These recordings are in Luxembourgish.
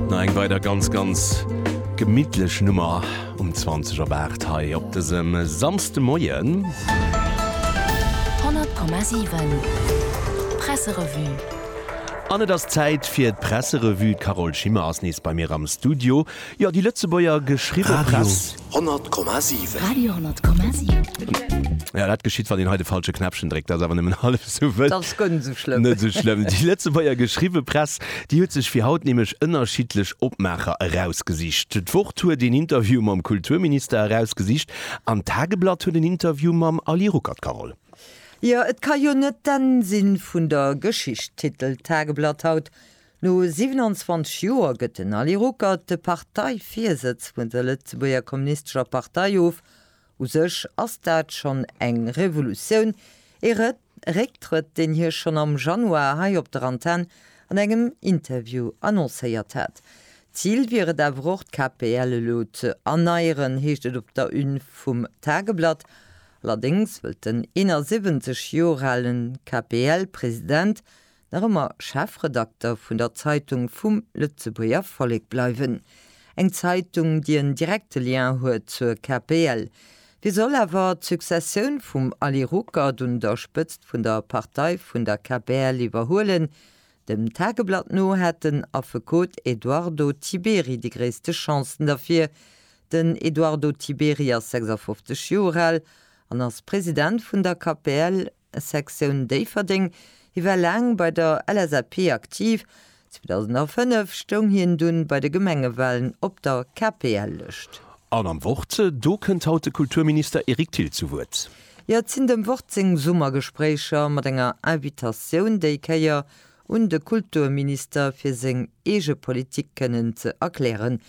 No eng weider ganz ganz gemittlech Nummer um 20 op 8 hei op dësem Samsdemoien. 100,7 Presserevue. An et ass Zäit fir d'Presserevue. D'Carole Schimmer ass nees bei mir am Studio. Jo, déi Lëtzebuerger geschriwwe Press. Radio. 100,7. Radio 100,7. Jo, dat geschitt, wann een hei de falsche Knäppchen dréckt. Dat ass awer nëmmen hallef esou wëll. Dat ass guer net esou schlëmm. Net esou schlëmm. Déi Lëtzebuerger geschriwwe Press, déi huet sech fir haut nämlech ënnerschiddlech Opmaacher erausgesicht. D'Wort huet een Interview mam Kulturminister erausgesicht an d'Tageblatt huet en Interview mam Aly Ruckert, Carole. Jo, et ka jo net d'Enn sinn vun der Geschicht, titelt d'Tageblatt haut. No 27 Joer gëtt den Ali Ruckert de Parteivirsëtz vun der Lëtzebuerger Kommunistescher Partei of. U sech ass dat schonn eng Revolutioun, ee Récktrëtt, deen hie schonn am Januar hei op der Antenn an engem Interview annoncéiert hat. Zil wier et awer och d'KPL elo ze erneieren, heescht et op der Une vum Tageblatt. Allerdéngs wëllt den 71 Joer ale KPL-President nach ëmmer Chefredakter vun der Zeitung vum Lëtzebuerger Vollek bleiwen, eng Zeitung, déi en direkte Lien huet zur KPL. Wéi soll awer d'Successioun vum Aly Ruckert un der Spëtzt vun der Partei vun der KPL iwwerhuelen? Dem Tageblatt no hätt den Affekot Eduardo Tiberi déi gréisste Chancen derfir. Den Eduardo Tiberi ass 56 Joer al an ass President vun der KPL. Sektioun Déifferdeng. Hie war laang bei der LSAP aktiv. 2005 stoung hien dunn bei de Gemengewalen op der KPL-Lëscht. An am Wort, do kënnt haut de Kulturminister Eric Thill zu Wuert. Hyacinthe am Wort seng Summergespréicher mat enger Invitatioun déi Kéier un de Kulturminister fir seng eege Politik kënnen ze erklären.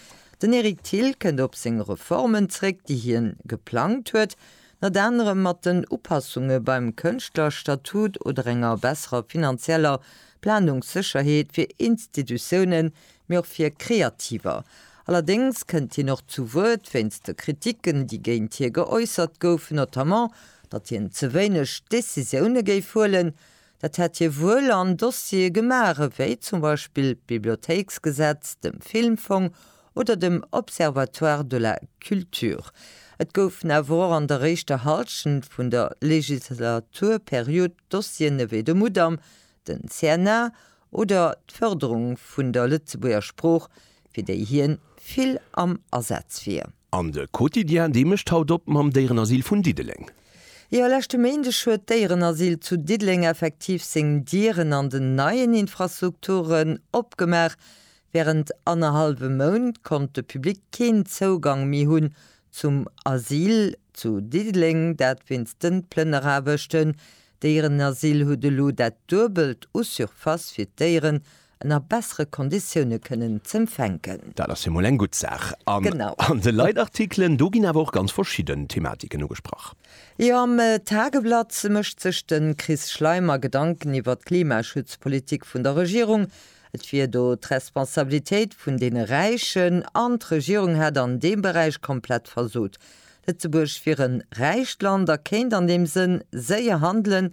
Den Eric Thill kënnt op seng Reformen zréck déi hien geplangt huet Ënnert anerem mat den Upassunge beim Kënschtlerstatut oder enger besserer finanzieller Planungssécherheet fir Institutiounen, mee och fir Kreativer. Allerdéngs kënnt hien och zu Wuert wéinst de Kriticken, déi géint hie geäussert goufen, notamment, datt hien ze wéineg Decisioune géif huelen, Dat hätt hie wuel an Dossiere gemaach ewéi zum Beispill d'Bibliothéiksgesetz, dem Filmfong oder dem Observatoire de la culture. Et goufen awer och an der éischter Hallschent vun der Legislaturperiod Dossieren ewéi de Mudam, den CNA oder d'Fërderung vun der Lëtzebuerger Sprooch, fir déi hien vill am Asaz wier. An de Quotidien de mécht haut op mam Déierenasyl vun Diddeleng. Jo, leschte Méindeg huet d'Déierenasyl zu Diddeleng effektiv seng Dieren an den neien Infrastrukturen opgemaach. Wärend annerhallwem Mount konnt de Public keen Zougang méi hunn zum Asyl zu Diddeleng, dat wéinst den Plënneraarbechten. D'Déierenasyl huet elo dat duebelt u Surface fir d'Déieren an a bessere Konditioune kënnen z'empfänken. Dat ass jo mol eng gutt Saach. An an de Leitartikelen, do ginn awer och ganz verschidden Thematiken ugesprach. Jo, am Tageblatt mécht sech de Chris Schleimer Gedanken iwwer d'Klimaschutzpolitik vun der Regierung. Et wier do d'Responsabilitéit vun deene Räichen an d'Regierung hätt an deem Beräich komplett versot. Lëtzebuerg wier en räicht Land a kéint an deem Sënn séier handelen,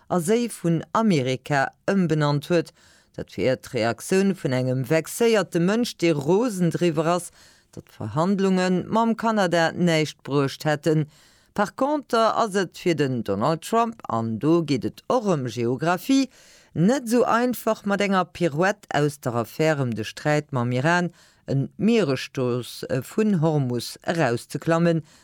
a Séi vun Amerika ëmbenannt huet, dat fir Äert d'Reaktioun vun engem vexéierte Mënsch, dee rosen driwwer ass, datt d'Verhandlunge mam Kanada näischt bruecht hätten. Par conter ass et fir den Donald Trump, an do geet et och ëm Geographie, net esou einfach mat enger Pirouette aus der Affär ëm de Sträit mam Iran, en Mieresstrooss vun Hormus, erauszeklammen,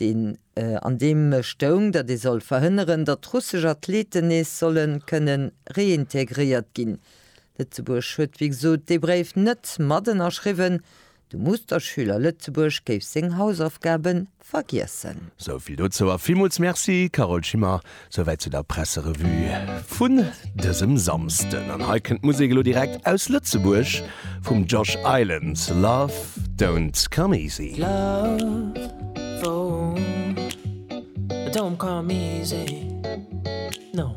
deen an deem stoung, datt ee soll verhënneren, datt russesch Athleten nees solle kënne reintegréiert ginn. Lëtzebuerg huet wéi gesot dee Bréif net mat ënnerschriwwen. De Musterschüler Lëtzebuerg géif seng Hausaufgabe vergiessen. Sou vill dozou a villmools Merci Carole Schimmer Souwäit zu der Presserevue vun dësem Samsden. An hei kënnt d'Musek elo direkt aus Lëtzebuerg vum Josh Island, Love don't come easy. Love don't come easy, no.